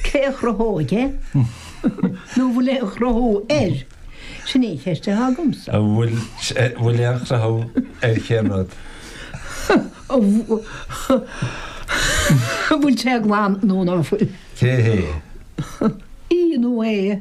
Cé a chruthóidh é? Nó an bhfuil aon chruthú air? Sin í an cheist atá agamsa. An bhfuil aon chruthú ar cén rud? An bhfuil sé glan nó ná fuil? Í nó é?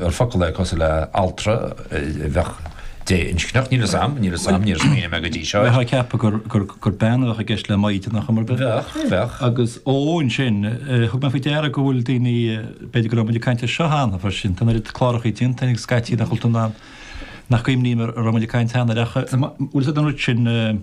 ar focal é cosúil le altra a bheadh dé-inscneach, níl 'fhios a'm, níl 'fhios a'm, níor smaoinigh mé go dtí seo air. Bheifeá ag ceapadh gur bean a bheadh i gceist le maighdeanach, ar aon nós? Bheadh, bheadh. Agus ó ansin, thug mé faoi deara go bhfuil daoine, b'fhéidir go raibh muid ag caint air seo cheana freisin, tá an oiread cláracha déanta againn scaití sa Chultúrlann nach gcuimhním an raibh muid ag caint cheana air nach bhfuil siad an oiread sin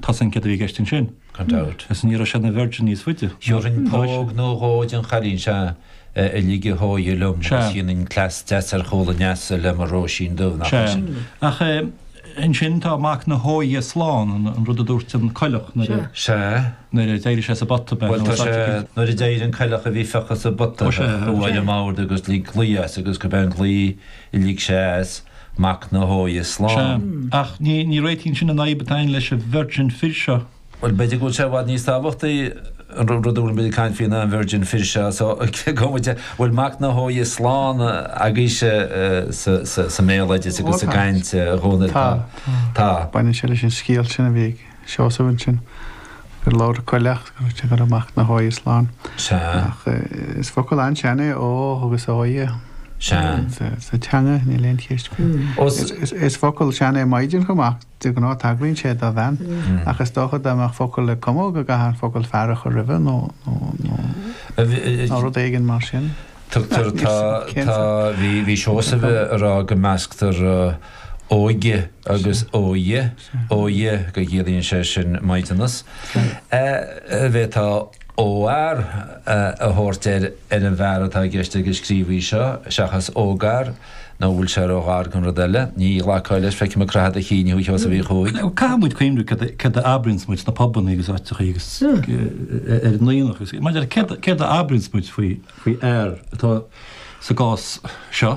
Tá san ceadaithe i gceist ansin, gan dabht, is ní raibh sé ina virgin níos faide. Gheobhainn póg nó dhó ón gcailín seo a ligfeadh a hóighe liom agus dhéanfainn cleas deas ar chúl an leasa le mo Róisín Dubh, nach é sin? Sea. Ach ansin tá mac na hóighe slán, an rud a dúirt an coileach nuair a. Sea. nuair a d'éirigh sé sa bpota. Bhuel, tá sé, nuair a d'éirigh an coileach a bhí fiuchta sa bpota, bhuail aniar de agus lig glao as agus go binn glao Lig sé as, mac na hóighe Sea. slán. Ach ní réitíonn sin an fhadhb atá againn leis an virgin fir seo. Bhuel, b'fhéidir go bhfuil sé i bhfad níos tábhachtaí an rud a bhfuilim ag caint fé ná an virgin fir seo, so an bhfuil mac na hóighe slán agaibhse sa mbéaloideas agus sa gcaint i gConamara. Tá, tá. Tá. Baineann sé leis an scéal sin a bhí ag. Seosamh ansin. Gur labhair an coileach á rá go raibh mac na hóighe slán. Sea. Ach is focal an-sean é ógh agus óighe. Sea. Sa teanga níl aon cheist faoi. Is focal sean é maighdean chomh maith, de ghnáth tagraíonn sé do bhean, ach is dócha dá mbeadh focal le cumadh go gcaithfeá an focal fear a chur roimis nó rud éigin mar sin. Tugtar tá, bhí Seosamh ag rá go measctar óige agus óighe. ógh óighe go gciallaíonn sé sin maighdeanas b'fhéidir óghfhear a thabhairt ar ar an bhfear atá i gceist ag an scríobhaí seo seachas ógfhear nó an bhfuil sé róghar don rud eile. Ní ghlacfá leis, feicim ag croitheadh do chinn thú, a Sheosaimh Uí Chuaig. Caithfidh muid cuimhniú céard a abraíonns muid sna pubanna agus áiteacha agus ar an aonach agus mar gheall ar céard a abraíonns muid faoi fhear atá sa gcás seo.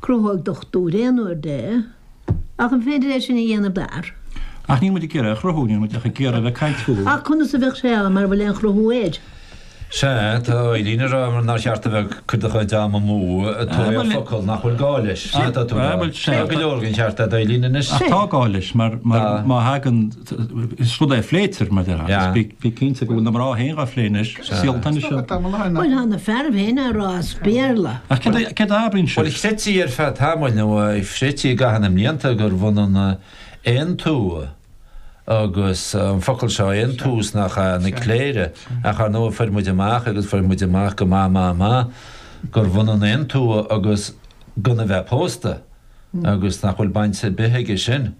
Chruthóidh dochtúir aon uair é, ach an féidir é sin a dhéanamh d'fhear? Ach níl muid ag iarraidh a chruthú, níl muid ach ag iarraidh a bheith ag caint faoi. Ach conas a bheadh sé ann mara bhfuil aon chruthú air? Sea, tá Alan ag rá nár cheart duit a bheith ag cur do chuid am amú ag tóraíocht focal nach bhfuil gá leis. Sin atá tú ag rá. Tá go leor den cheart a'd Alan anois. Ach tá gá leis mar má thagann. Is rud é a phléitear, mar dhea, agus bí cinnte go bhfuil na mná féin á phlé anois, saolta anois iad. Bhuel, thá na fearaibh féin á rá as Béarla. Ach cad é a abraíonn siad? Bhuel, chreidtí ar feadh tamaill, nó chreidtí i gcaitheamh na mblianta, gurbh ionann aontumha agus an focal seo, aontumha, na cléire. Ach, ar ndóigh, fuair muid amach, agus fuair muid amach go maith maith maith, gurbh ionann aontumha agus gan a bheith pósta, agus nach bhfuil baint ar bith aige sin.